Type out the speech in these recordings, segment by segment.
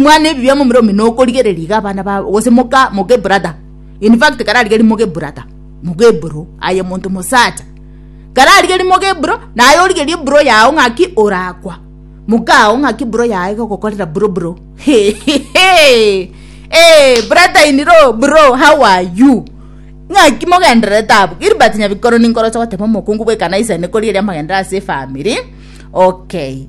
Mwana ebibe momura omino okorigereria iga abana babo gose moka moke brother in fact kararigeri moke brother moke bro aye monto mosacha kararigeri moke bro naye origerie bro yao ng'aki orakwa mokao ng'aki bro yaye gogokorera bro bro hehehe eh brother in law bro how are you ng'aki mogendererete abwo Gilbert Nyabikoro ninkoroche goteba omokungu bw'ekanisa ene korigeria amagenderero ase efamiri okay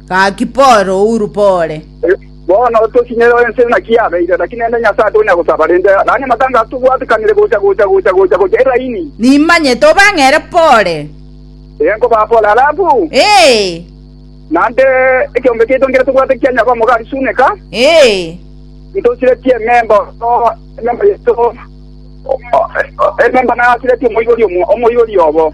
Gaki pore, ouru pore. Bono tosinere ense naki yabeire, naki nende Nyasae tonya gosaba rende, nanye amatangaso tobwatikanire gocha gocha gocha gocha gocha eraini. Nimanyete obang'ere pore. Ee, nkobaa pore. Alafu. Ee. Naende ekeombe kiaito nkere tobwate kia nyaba omogari Suneka. Ee. Ntosiretie ememba oo, ememba yaito, ememba nasiretie omoibori omo, omoibori obo.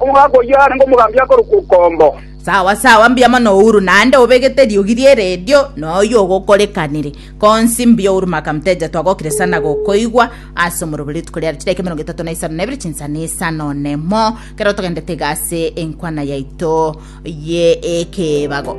Omogaka oyio arenge omogambi akorokwa Okombo. Sawa sawa mbuya mono Uhuru naende obegete riogi rie radio noyo ogokorekanire konsi mbuya Uhuru Maka Mteja twagokire sana gokoigwa ase omorobo rituko riare chidakika emerongo etato na isano na ibere chinsana isano nemo kero togendete iga ase enkwana yaito ye ekebago